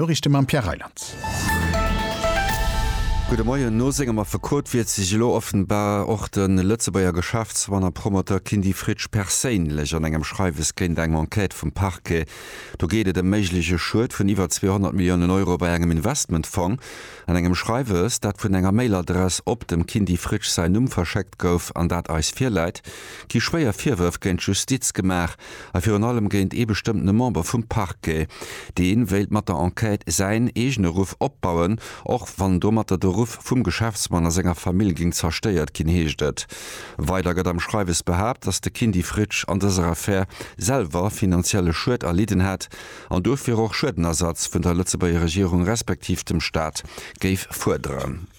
Noriichte mam Pierre Reyland. Gudde Moien. No sengem Affekot wiert sech elo offenbar och de Lëtzebuerger Geschäftsmann a Promoteur Kindy Fritsch perséinlech an engem Schreiwes géint eng Enquête vum Parquet. Do geet et ëm méigleche Schued vun iwwer 200 Milliounen Euro bei engem Investmentfong. An engem Schreiwes, dat vun enger Mailadress op dem Kindy Fritsch säin Numm verschéckt gouf an dat eis virläit, gi schwéier Virwërf géint d'Justiz gemaach. a virun allem géint ee bestëmmtene Member vum Parquet. Dee wéilt mat der Enquête säin eegene Ruff opbauen, och wann domatter de Ruff vum Geschäftsmann a senger Famill géing zerstéiert ginn, heescht et weider. Gëtt am Schreiwes behaapt, datt de Kindy Fritsch an dëser Affär selwer finanzielle Schued erlidden hätt an dofir och Schuedenersatz vun der Lëtzebuerger Regierung respektiv dem Staat géif fuerderen.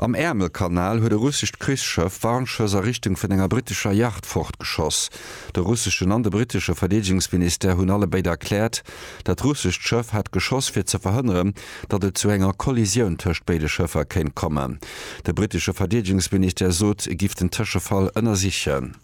Am Äermelkanal huet e russescht Krichsschëff Warnschëss a Richtung vun enger brittescher Yacht fortgeschoss. De russeschen an de brittesche Verdeedegungsministère hunn alle béid erkläert, dat russescht Schëff hätt geschoss fir ze verhënneren, datt et zu enger Kollisioun tëscht béide Schëffer kéint kommen. De brittesche Verdeedegungsministère sot, e giff den Tëschefall ënnersichen.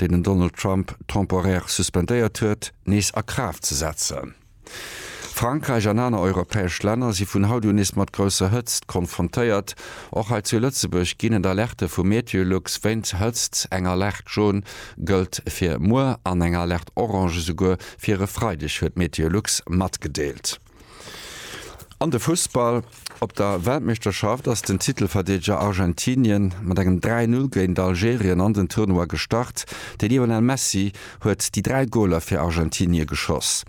deen den Donald Trump temporaire suspendéiert huet, nees a Kraaft ze setzen. Frankräich an aner europäesch Länner si vun haut un nees mat grousser Hëtzt konfrontéiert. Och hei zu Lëtzebuerg ginn et Alerte vu Meteolux wéint Hëtzt. Eng Alerte Jaune gëllt fir muer an eng Alerte Orange esouguer fir e Freideg, huet Meteolux matgedeelt. An de Fussball, Op der Weltmeeschterschaft ass den Titelverdeedeger Argentinien mat engem 3-0 géint Algerien an den Tournoi gestart. De Lionel Messi huet déi dräi Goler fir Argentinie geschoss.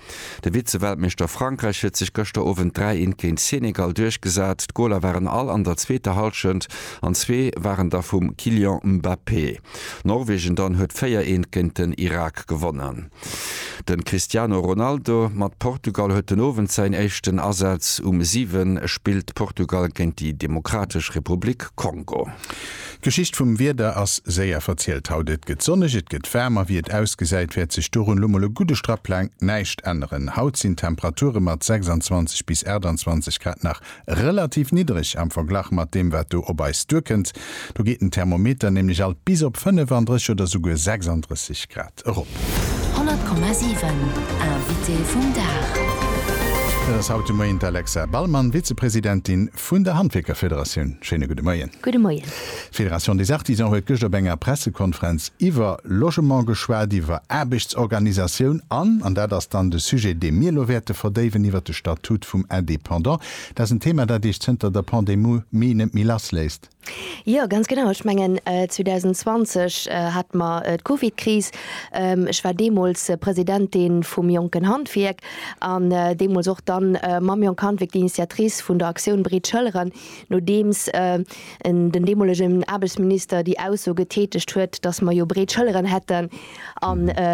De Vize-Weltmeeschter Frankräich huet sech gëschter Owend 3 Eent géint Senegal duerchgesat. D'Goler waren all an der zweeter Hallschent an zwee waren da vum Kylian Mbappé. Norwegen dann huet 4 Eent géint den Irak gewonnen. Den Cristiano Ronaldo mat Portugal huet den Owend säin éischten Asaz. Um 7 spillt Portugal géint déi Demokratesch Republik Kongo. D'Geschicht vum Wieder ass séier verzielt haut. Et gëtt sonneg, et gëtt waarm a wéi et ausgesäit, wäert sech dorun lo mol e gudde Strapp laang näischt änneren. Haut sinn d'Temperature mat 26 bis 28 Grad nach relativ niddereg am Verglach mat deem, wat do op eis duerkënnt. Do geet den Thermometer nämlech alt bis op 35 oder souguer 36 Grad. erop. 100,7 Invité vum Dag. Dat ass haut de Moien d'Alexa Ballmann, Vizepresidentin vun der Handwierkerfederatioun. Schéine gudde Moien. Gudde Moien. D'Fédération des Artisans huet gëscht op enger Pressekonferenz iwwer Logement geschwat, iwwer Aarbechtsorganisatioun an, an dat ass dann de Sujet, dee mir elo wäerte verdéiwen, iwwer de Statut vum Indépendant. Dat ass en Thema, dat Iech zënter der Pandemie net méi lassléisst. Jo, ganz genau. Ech mengen 2020 hate mer d'Covidkris. Ech war deemools Presidentin vum Jonken Handwierk an deemools och dann mam Jonk Handwierk d'Initiatrice vun der Aktioun Breet Schëlleren, nodeems den deemolegen Aarbechtsminister déi Ausso getätegt huet, dass mer jo breet Schëlleren hätten. a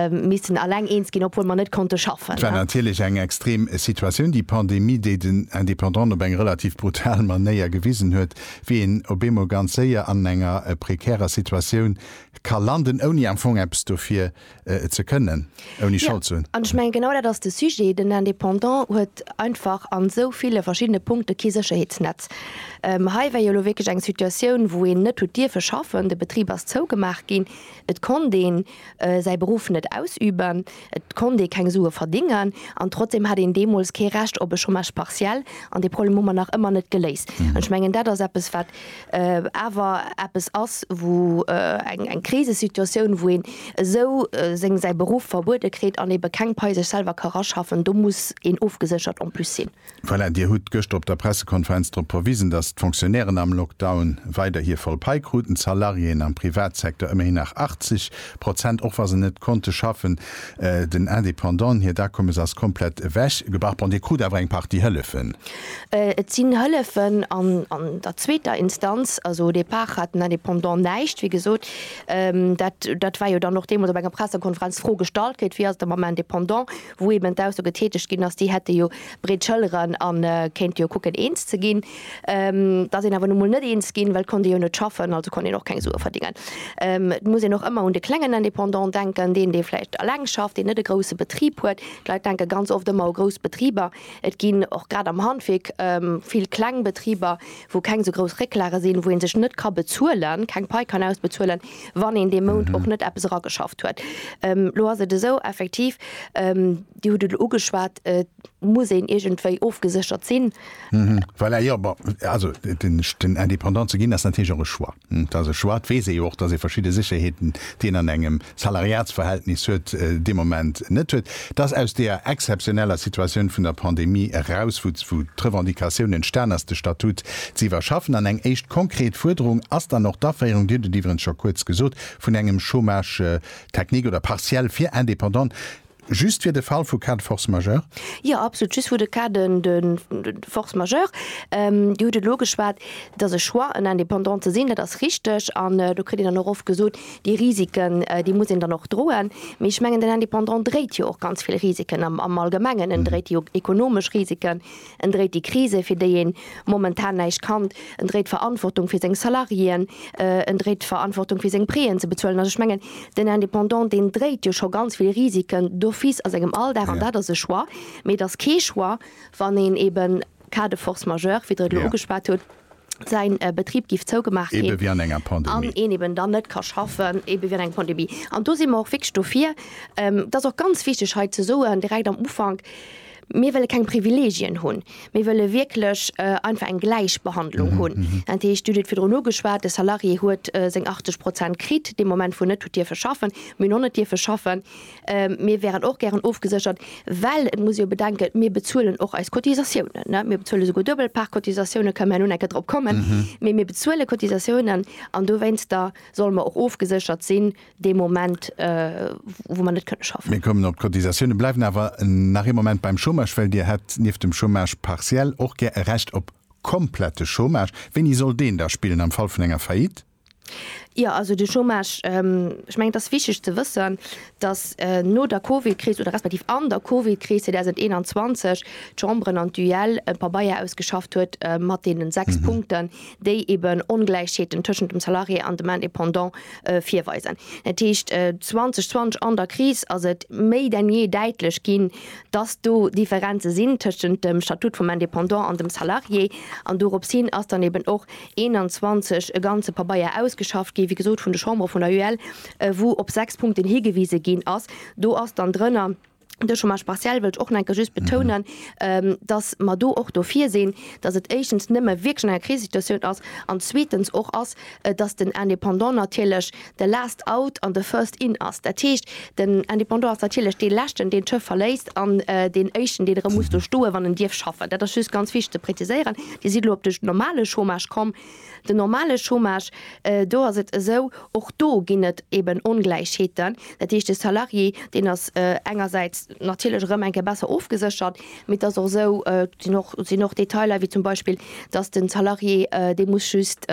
missen alleng eens ginn, obwuel mer net konnte schaffen. Et war natierlech eng extrem Situatioun, déi Pandemie, déi den Indépendanten op eng relativ brutal Manéier gewisen huet, wéi een op eemol ganz séier an enger prekärer Situatioun ka landen, ouni am Fong eppes dofir ze kënnen, ouni Schold ze hunn. An ech mengen, genau dat ass de Sujet, Den Indépendant huet einfach a sou ville verschiddene Punkte kee Sécherheetsnetz. Hei war jo elo wierklech eng Situatioun, wou een net huet dierfe schaffen, de Betrib ass zougemaach ginn. Et konnt ee säi Beruff net ausüben, et konnt ee keng Sue verdingen an trotzdeem hat een deemools kee Recht op e Chômage partiel. An dee Problem hu mer nach ëmmer net geléist. An ech mengen, dat ass eppes, wat awer eppes ass, wou eng Krisesituatioun, wou een esou seng säi Beruff verbuede kritt an eebe keng Pai sech selwer ka raschaffen, do muss een ofgeséchert en plus sinn. Voilà, Dir hutt gëschter op der Pressekonferenz drop verwisen, datt d'Fonctionnairen am Lockdown weider hir voll Pai kruten, d'Salariéen am Privatsecteur ëmmerhin nach 80 Prozent, och wa se net konnte schaffen. Den Independanten hiert Akommes ass komplett ewech gebach. Bon, Dir krut awer eng Partie Hëllefen. Et sinn Hëllefen an der zweeter Instanz. Also au départ hat den Indépendant näischt, wéi gesot. Dat war jo dann och deemools op enger Pressekonferenz d'Fro gestallt kritt, Wéi ass et da mam Indépendant? wou eben d'Ausso getätegt ginn ass, déi hätte jo breet Schëlleren a kéinte jo kucken eens ze ginn. Et ass een awer nu mol net eens ginn, well et konnt ee jo net schaffen, also konnt een och keng Sue verdéngen. Et muss een och ëmmer un de klengen Indépendant denken, deen, dee vläicht eleng schafft, deen net e grousse Betrib huet. D'Leit denke ganz oft ëmmer u grouss Betriber. Et ginn och grad am Handwierk vill kleng Betriber, wou keng esou grouss Récklage sinn, wou ee sech net ka bezuelen, keng Pai kann ausbezuelen, wann een dee Mount och net eppes erageschafft huet. Elo ass et esou, effektiv, Dir hutt et elo ugeschwat, et muss een iergendwéi ofgeséchert sinn. Voilà, jo, bon, also den Indépendant ze ginn ass natierlech och e Choix. Dass e schwat, weess ee jo och, dass ee verschidde Sécherheeten, déi een an engem Salariatsverhältnis huet, dee Moment net huet. Dass aus deeër exzeptioneller Situatioun vun der Pandemie eraus, wou d'Revendicatioun entstan ass, de Statut ze iwwerschaffen, an eng éischt konkret Fuerderung ass dann och d'Aféierung, Dir hutt et iwweregens scho kuerz gesot, vun engem Chômage technique oder partiel fir Indépendante. Just fir de Fall vu Cas de force majeure? Jo, absolut, just vu de Cas de force majeure. Dir hutt et elo ugeschwat, Et ass e Choix, en Indépendant ze sinn, dat ass richtig. An do kritt een dann och oft gesot, Déi Risiken, déi muss een dann och droen. Mee ech mengen, den Indépendant dréit jo och ganz vill Risiken am Allgemengen. En dréit déi ekonomesch Risiken, En dréit déi Krise, fir déi een momentan näischt kann. En dréit d'Verantwortung fir seng Salariéen. En dréit d'Verantwortung fir seng Préen ze bezuelen. Also ech mengen, den Indépendant, deen dréit jo scho ganz vill Risiken d'office a sengem Alldag. An dat ass e Choix. Mee et ass kee Choix, wann een eben, cas de force majeure, wéi Der et elo ugeschwat hutt, säin Betrib géif zougemaach ginn. Ebe wéi an enger Pandemie. An een eben dann net ka schaffen. Ebe wéi an enger Pandemie. An do si mer och wierklech dofir. Et ass och ganz wichteg hei ze soen, direkt am Ufank, Mir wëlle keng Privilegien hunn. Mir wëlle wierklech einfach eng Gläichbehandlung hunn. Dat heescht, d'Judith huet virdrun ugeschwat, de Salarié huet seng 80 Prozent kritt dee Moment, wou en net huet dierfe schaffen, wou en och net dierfe schaffen. Mir wäeren och gären ofgeséchert, well et muss ee jo bedenken, mir bezuelen och eis Cotisatiounen. Mir bezuele souguer duebel Part Cotisatiounen, kënne mer herno nach eng Kéier drop kommen, mee mir bezuele Cotisatiounen an dowéinster solle mer och ofgeséchert sinn, dee Moment, wou mer net kënne schaffen. Mir kommen op d'Cotisatiounen, bleiwen awer nach ee Moment beim Chômage, well Dir hätt nieft dem Chômage partiel och gär e Recht op komplette Chômage. Wéini soll deen da spillen? Am Fall vun enger Faillite? Jo, also de Chômage, ech mengen, et ass wichtig ze wëssen, dass no der Covidkris oder respektiv an der Covidkris 2021 d'Chambren an d'UEL e Pabeier ausgeschafft huet mat deenen sechs Punkten, déi eben Ongläichheeten tëschent dem Salarié an dem Indépendant virweisen. Dat heescht, 2020 an der Kris ass et méi denn jee däitlech ginn, dass do Differenze sinn tëschent dem Statut vum Indépendant an dem Salarié. An dorops hin ass dann eben och 21 e ganze Pabeier ausgeschafft ginn, wéi gesot, vun de Chambres, vun der UEL, wou op sechs Punkten higewise ginn ass. Do ass dann drënner, De Chômage partiel wëll ech och nach eng Kéier just betounen, dass mer do och dofir sinn, dass et éischtens nëmme wierklech an enger Krisesituatioun ass an zweetens och ass, dass den Indépendant natierlech de last out an de first in ass. Dat heescht, den Indépendant ass natierlech dee leschten, deen d'Schëff verléisst an deen éischten, deen erëm muss do stoen, wann en dierf schaffen. Dat ass just ganz wichteg ze präziséieren. Dir sidd elo op de normale Chômage komm. Den normale Chômage, do ass et esou, och do ginn et eeben Ongläichheeten. Dat heescht, de Salarié, deen ass engersäits natierlech erëm eng Kéier besser ofgeséchert, mee et ass och esou, et sinn och, et sinn och Detailer, wéi zum Beispill, datt de Salarié, dee muss just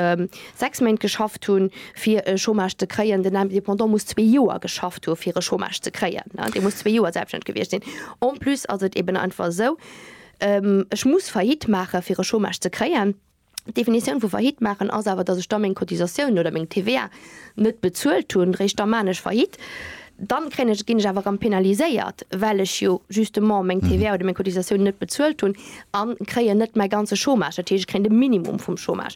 sechs Méint geschafft hunn, fir e Chômage ze kréien, den Indépendant muss zwee Joer geschafft hu fir e Chômage ze kréien. Dee muss zwee Joer selbststänneg gewiescht sinn. En plus ass et eeben einfach esou, Ech muss Faillite maache fir e Chômage ze kréien. D'Definitioun vu Faillite maachen ass awer, dass ech da meng Cotisatiounen oder meng TVA net bezuelt hunn. Réischt da maan ech Faillite. Dann kréien ech, ginn ech awer erëm penaliséiert, well ech jo justement meng TVA oder meng Cotisatiounen net bezuelt hunn a kréien net mäi ganze Chômage. Dat heescht, ech kréien de Minimum vum Chômage.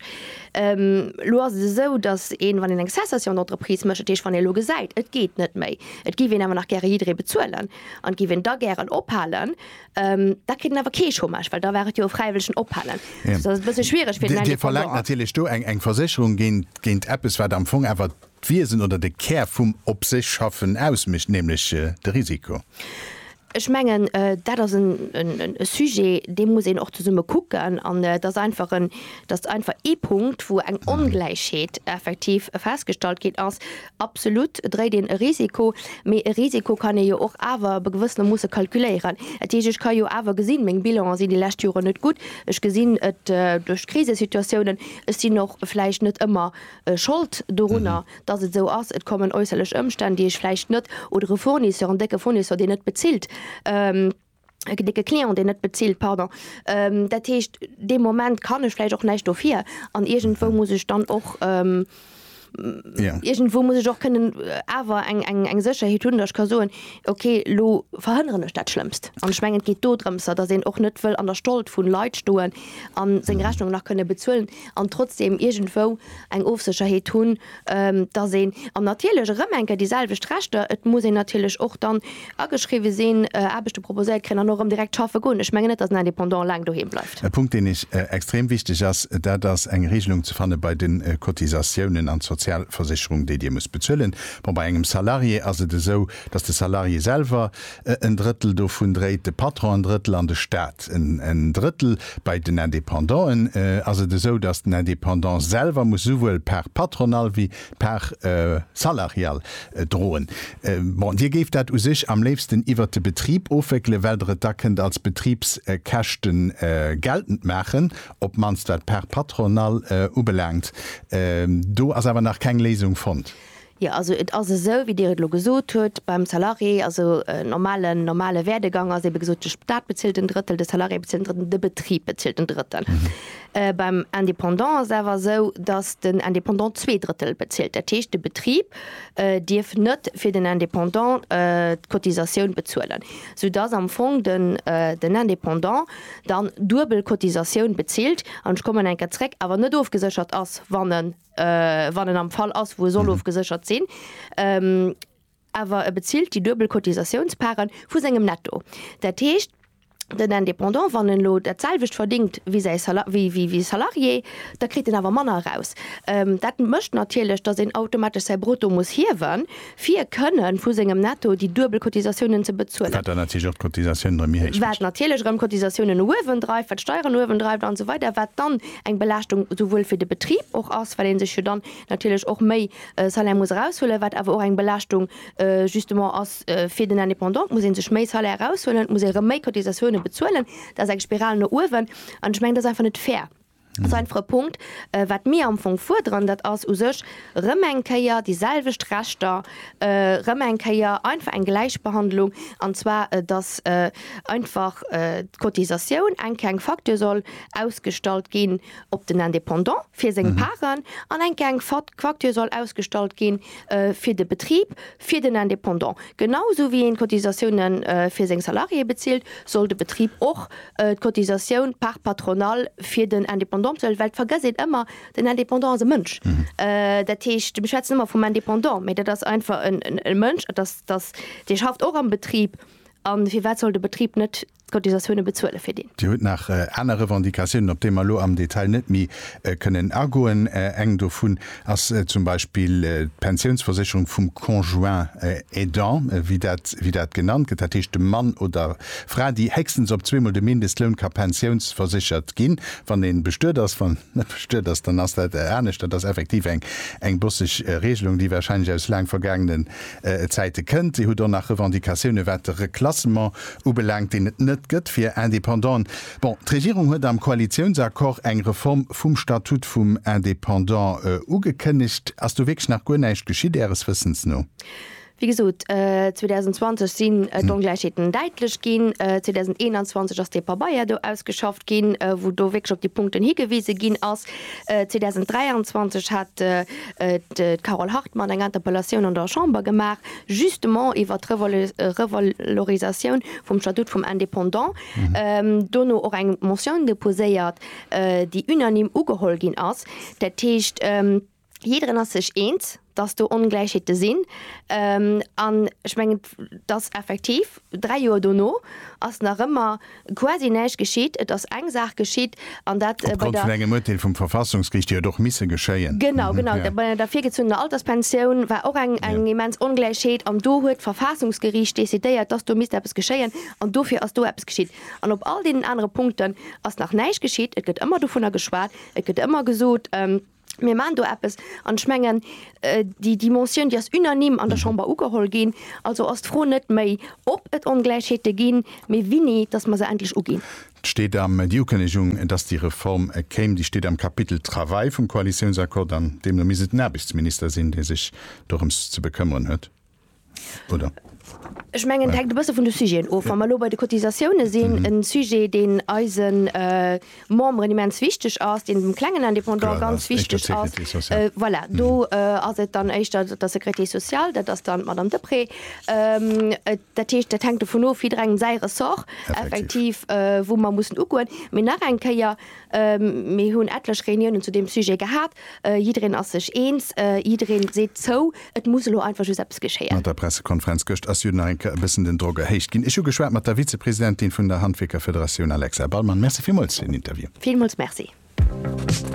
Elo ass et esou, dass een, wann een eng Cessation d'entreprise mécht, dat heescht, wann ee elo gesäit, et geet net méi, et géif een awer nach gäre jidderee bezuelen an et géif een da gären ophalen, Ähm, da kritt en awer kee Chômage, well da war et jo e fräiwëllegen Ophalen. Ja. Dat ass e bësse schwiereg fir den Dir verlangt Indépendant. natierlech do eng eng Versécherung géint géint eppes, wat am Fong awer d'Wiesen oder de Kär vum op sech schaffen ausmécht, nämlech äh, de Risiko. Ech mengen, äh, dat ass en en en e Sujet, dee muss een och zesumme kucken. An äh, dat ass einfach en dat ass einfach ee Punkt, wou eng Ongläichheet effektiv festgestallt ginn ass, Absolut dréit een e Risiko, mee e Risiko kann ee jo och awer ab e gewëssene Moosse kalkuléieren. Dat heescht, ech ka jo awer gesinn, meng Bilanen sinn déi lescht Joren net gutt, ech gesinn et duerch d'Krisesituatiounen, ech sinn och vläicht net ëmmer Schold dorunner, dass et esou ass, et kommen äusserlech Ëmstänn, déi ech vläicht net, oder e Fournisseur, en décke Fournisseur, deen net bezilt. de Client deen net bezilt, pardon, dat heescht dee Moment kann ech vläicht och näischt dofir an iergendwou muss ech dann och, iergendwou muss ech och kënnen awer eng Sécherheet hunn, datt ech ka soen, okay elo verhënneren ech dat Schlëmmst. An ech mengen et geet do drëmser, datt een och net wëll an der Schold vu Leit stoen a seng Rechnung nach kënne bezuelen an trotzdeem iergendwou eng Ofsécherheet hunn, dass een, an natierlech erëm eng Kéier déi selwecht Rechter, et muss een natierlech och dann ageschriwwe sinn, Aarbechte proposéiert kréien an och erëm direkt schaffe goen. Ech mengen net, dass en Indépendant laang doheem bleift. E Punkt, deen eis extrem wichteg ass, dat ass eng Regelung ze fanne bei de Cotisatiounen an d'Sozialversicherung, déi Dir musst bezuelen. Bon, bei engem Salarié ass et esou, dass de Salarié selwer, En Drëttel dovun dréit de Patron, en Drëttel an de Staat, en Drëttel bei den Indépendanten. Ass et esou, dass den Indépendant selwer muss esouwuel d'Part patronale wéi d'Part salariale droen? Bon, Dir géift dat u sech am léifsten iwwert de Betrib ofwéckelen, well Der et da kënnt als Betribskäschte geltend maachen, op d'mannst wat d'Part patronale ubelaangt. Do ass awer nach keng Léisung fonnt. Jo, also et ass esou, wéi Dir et elo gesot hutt, beim Salarié, also en normalen, normale Werdegang ass ebe gesot, de Stat bezilt en Drëttel, de Salarié bezilt en Drëttel, de Betrib bezilt en Drëttel. Beim Indépendant ass awer esou, dass den Indépendant zwee Drëttel bezilt. Dat heescht, de Betrib dierf net fir den Indépendant d'Cotisatioun bezuelen, soudass am Fong den Indépendant dann duebel Cotisatioun bezilt an, ech kommen eng Kéier zréck, awer net ofgeséchert ass, wann e. wann en am Fall ass, wou e soll ofgeséchert sinn, awer e bezilt déi duebel Cotisatiounsparten vu sengem Netto. Dat heescht, den Indépendant, wann en elo dat selwecht verdéngt wéi säi wéi wéi e Salarié, da kritt en awer manner eraus. Dat mécht natierlech, datt een automatesch säi Brutto muss hiewen, fir kënnen vu sengem Netto déi duebel Cotisatiounen ze bezuelen. Wat dann natierlech och d'Cotisatiounen erëm méi héich mécht. Wat natierlech erëm d'Cotisatiounen uewendreift, wat d'Steieren uewendreift an esou weider, wat dann eng Belaaschtung souwuel fir de Betrib och ass, well ee sech jo dann natierlech och méi Salaire muss eraushuelen, wat awer och eng Belaaschtung justement ass fir den Indépendant. Et muss ee sech méi Salaire eraushuelen, et muss ee erëm méi Cotisatiounen bezuelen. Dat ass eng Spiral no uewen an ech mengen, dat ass einfach net fair. Seinfre Punkt, wat mir am Fong fuerderen, dat ass u sech erëm eng Kéier déi selwecht Rechter, erëm eng Kéier einfach eng Gläichbehandlung, an zwar dass einfach d'Cotisatioun eng Kéier eng Facture soll ausgestallt ginn op den Indépendant fir seng Paren an eng Kéier eng Facture soll ausgestallt gi fir de Betrib Fir den Indépendant, genau esou wéi een d'Cotisatioune fir seng Salariéë bezilt, soll de Betrib och d'Cotisatioun par patronale fir den Indépendant bezuelen, well et vergësst een ëmmer, den Indépendant ass e Mënsch. Dat heescht, mir schwätzen ëmmer vum Indépendant, mä dat ass einfach e Mënsch, et ass, dee schafft och am Betrib. A firwat soll de Betrib net D'Cotisatioune bezuele fir deen. Dir hutt nach aner Revendicatiounen, op déi mer elo am Detail net méi kënnen agoen. Eng dovun ass zum Beispill d'Pensiounsversécherung vum Conjoint aidant, wéi dat wéi dat genannt gëtt, dat heescht de Mann oder Fra, déi héchstens op zweemol de Mindestloun ka pensiounsverséchert ginn, wann ee bestuet ass. Wann en net bestuet ass, dann ass dat anescht. Dat ass effektiv eng eng bosseg Regelung, déi warscheinlech aus laang vergaangenen Zäite kënnt. Dir hutt och nach Revendicatiounen, wat de Reklassement Ubelaangt, deen et net gëtt fir Indépendante. Bon, d'Regierung huet am Koalitiounsaccord eng Reform vum Statut vum Indépendant ugekënnegt. Ass do wierklech nach guer näischt geschitt Äres Wëssens no? Wéi gesot, 2020 sinn d'Ongläichheeten däitlech ginn. 2021 ass dee Pabeier do ausgeschafft ginn, wou do wierklech op déi Punkten higewise ginn ass. 2023 hat d'Carole Hartmann eng Interpellatioun an der Chamber gemaach. justement iwwert d'Revalorisatioun vum Statut vum Indépendant, dono och eng Motioun deposéiert, déi unanime ugeholl ginn ass. Dat heescht, jidderen ass sech eens, dass do Ongläichheete sinn. An ech mengen, dass effektiv, Dräi Joer dono ass nach ëmmer quasi näischt geschitt. Et ass eng Saach geschitt, an dat bei der. Opgrond vun engem Urteel vum Verfassungsgericht, déi huet och misse geschéien. Genau, genau. Bei der virgezunnener Alterspensioun war och eng immens Ongläichheet, an do huet d'Verfassungsgericht decidéiert, dass do misst eppes geschéien, an dofir ass do eppes geschitt. An op all deenen anere Punkten ass nach näischt geschitt. Et gëtt ëmmer dovunner geschwat, et gëtt ëmmer gesot, Mir maachen do eppes. An ech mengen, déi Dimensioun, déi ass unanime an der Chamber ugeholl ginn. Also ass d'Fro net méi, ob et Ongläichheete ginn, mee wini, dass mer se endlech uginn. D'steet am, déi Ukënnegung, dass déi Reform kéim, déi steet am Kapitel Travail vum Koalitiounsaccord. An deemno misst et den Aarbechtsminister sinn, dee sech dorëms ze bekëmmeren huet. Oder? Ech mengen, dat hänkt e bësse vun de Sujeten of. Wa mer elo bei de Cotisatioune sinn, e Sujet, deen eisen Memberen immens wichteg ass, deen dem klengen Indépendant ganz wichteg ass, voilà, do ass et dann éischter der Sécurité sociale, dat ass dann d'Madame Deprez. Dat heescht, dat hänkt dovun of, jidderengem säi Ressort effektiv, wou mer mussen ugoen. Mee nach eng Kéier. Mir hunn etlech Reuniounen zu deem Sujet gehat. Jiddereen ass sech eens, jiddereen seet zou, et muss elo einfach just eppes geschéien. Mat der Pressekonferenz gëscht ass jo nach eng Kéier e bëssen den Drock erhéicht ginn. Ech hu geschwat mat der Vizepresidentin vun der Handwierkerfederatioun Alexa Ballmann. Merci villmools fir den Interview. Villmools Merci.